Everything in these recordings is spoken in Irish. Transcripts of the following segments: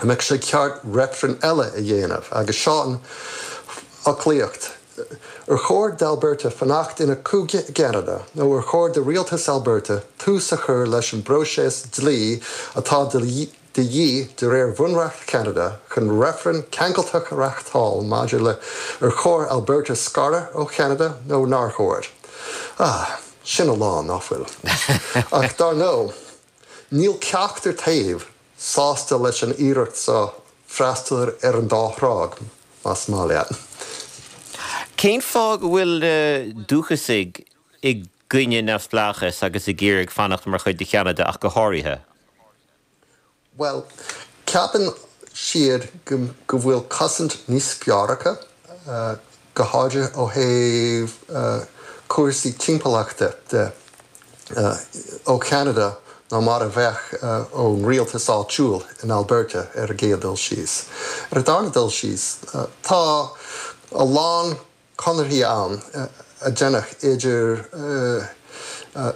An mbeadh sé ceart reifreann eile a dhéanamh? Agus seo an fhoclaíocht, Ar chóir d'Alberta fanacht ina cúige i gCeanada nó ar chóir do rialtas Alberta tús a chur leis an bpróiseas dlí atá de dhíth de réir Bhunreacht Cheanada chun reifreann ceangailteach a reáchtáil maidir le ar chóir Alberta scaradh ó Cheanada nó nár chóir? Ah, sin a lán, nach bhfuil? Ach dar ndóigh, níl ceachtar taobh sásta leis an iarracht so, freastal ar an dá thrá, más maith leat. Cén fáth go bhfuil na dúchasaigh i gcoinne neamhspleáchais agus ag iarraidh fanacht mar chuid de Cheanada ach go háirithe? Bhuel, ceapann siad go bhfuil cosaint níos fearr acu. go háirithe ó thaobh cúrsaí timpeallachta de, ó Cheanada nó mar a bheadh ón rialtas áitiúil in Alberta ar an gcéad dul síos. Ar an darna dul síos, tá a lán conarthaí ann a deineadh idir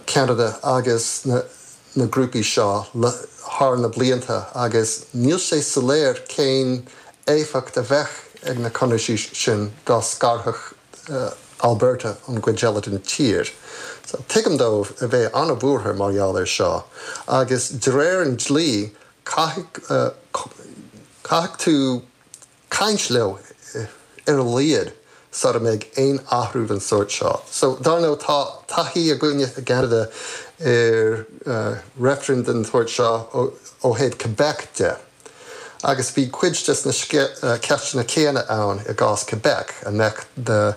Ceanada agus na. na grúpaí seo thar na blianta agus níl sé soiléir cén éifeacht a bheadh ag na conarthaí sin dá scarfadh Alberta ón gcuid eile den tír. Tuigim dóibh a bheith an-bhuartha mar gheall air seo agus de réir an dlí caithfidh tú caint leo ar a laghad sara mbeidh aon athrú den sórt seo. So, dar ndóigh, tá taithí againne i gCeanada ar reifrinn den tsórt seo ó thaobh Quebec de agus bhí cuid des na ceisteanna céanna ann i gcás Quebec, an mbeadh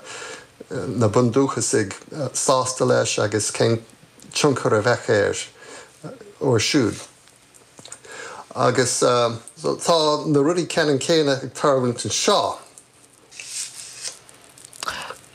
na bundúchasaigh sásta leis agus cén tionchar a bheadh air orthu siúd. Agus tá na rudaí ceannann céanna ag tarlúint anseo.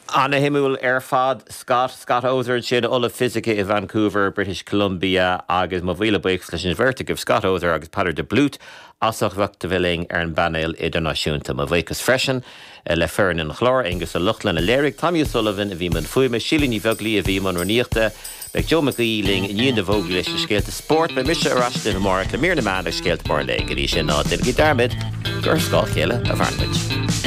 Ana-shuimiúil ar fad. Scott, Scott Oser ansin, Ollamh Fisice i Vancouver, British Columbia, agus mo mhíle buíochas leis an mbeirt agaibh, Scott Oser agus Peadar de Blúit, as ucht bheith linn ar an bpainéal idirnáisiúnta. Mo bhuíochas freisin. Le foireann an chláir, Aengus Ó Lochlainn, a léirigh, Tommy O'Sullivan a bhí i mbun fuaime, Síle Ní Bheaglaoí a bhí i mbun rúnaíochta, beidh Joe Mac Aoidh linn i ndiaidh na bhfógraí leis na scéalta spóirt. Beidh mise ar ais amárach le mír na meán agus scéalta móra an lae. Go dtí sin, ná déanaigí dearmad gur ar scáil chéile a mhaireann muid.